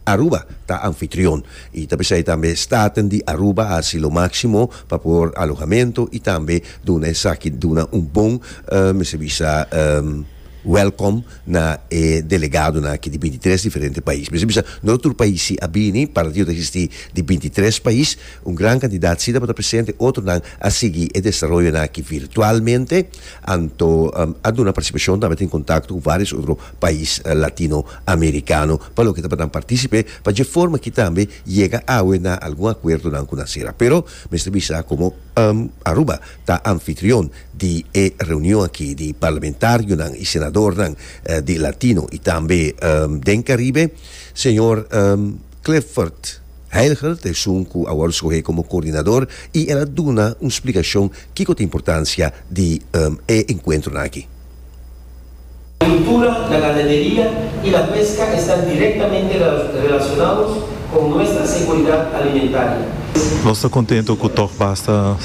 Aruba ta anfitrion y ta p'esey tambe staten di Aruba a haci lo maximo pa por alohamento y tambe duna esaki duna un bon mester bisa welcome na e delegadonan aki di binti tres diferente pais. Mester bisa no tur pais si a bini, para tio ta existi di binti tres pais, un gran cantidad si tabata presente, otronan a sigui e desaroyonan aki virtualmente, anto a duna participacion tambe ta en contacto cu varios otro pais latino americano. pa loke ta pa nan participe pa dje forma ki tambe yega awe na algun acuerdonan cu nan cera. Pero mester bisa como Aruba ta anfitrion di e reunion aki di parlamentarionan y senadornan di Latino y tambe den Caribe, señor Clifford Heilger ta esun cu awor scoge como coordinador y el a duna un splicacion kico ta importancia di e encuentronan aki. Agricultura, la ganaderia y la pesca esta directamente relacionados con nuestra seguridad alimentaria. Nos ta contento cu toch basta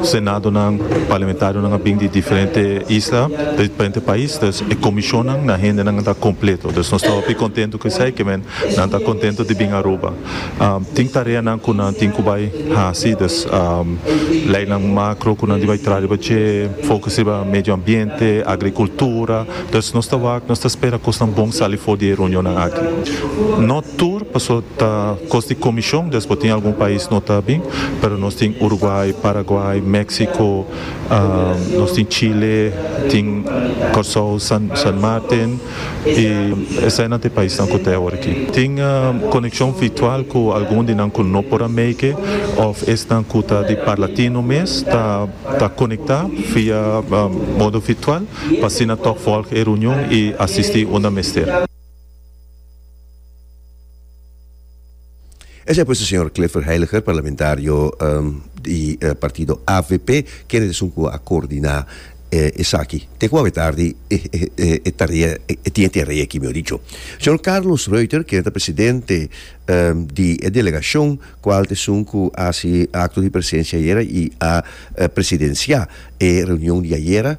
Senadonan, Parlamentarionan a bin di diferente isla, di diferente pais, dus e comisionnan, nan hendenan ta completo. Dus nos ta hopi contento cu esey, kimen nan ta contento di bin Aruba. Tin tareanan ku nan tin ku bai hasi, dus leinan makro ku nan tin bai traha riba dje, fokus riba medio ambiente, agrikultura, dus nos ta wak, nos ta spera kosnan bon sali for di e reunionnan aki. No tur, pasobra ta kos di komishon, dus por tin algun pais no ta bin, pero nos tin Uruguay, Paraguay, Meksiko, nos tin Chile, tin Kòrsou, San Martin. i esei nan ta e paisnan ku ta e aworiki tin konekshon virtual ku algun di nan ku no por a meike òf esnan ku ta di parla tino mes ta konektá via modo virtual pa asina tòg vòlg e reunion i asistí unda mester. Esei pues e señor Clifford Heiliger, parlamentario di partido avp, kende ta esun ku a koordiná esaki. Te ku awe tardi e tarea, e tin e tarea aki mi a dicho. Señor Carlos Ruiter, kende ta presidente di e delegashon, kual ta esun ku a hasi akto di presensia ayera i a presidensiá e reunion di ayera,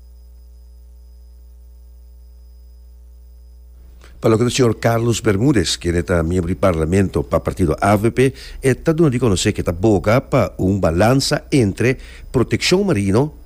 Pa loke di señor Carlos Bermudez, kende ta miembro di Parlamento pa partido avp, e ta duna di konosé ke ta boga pa un balansa entre protekshon marino,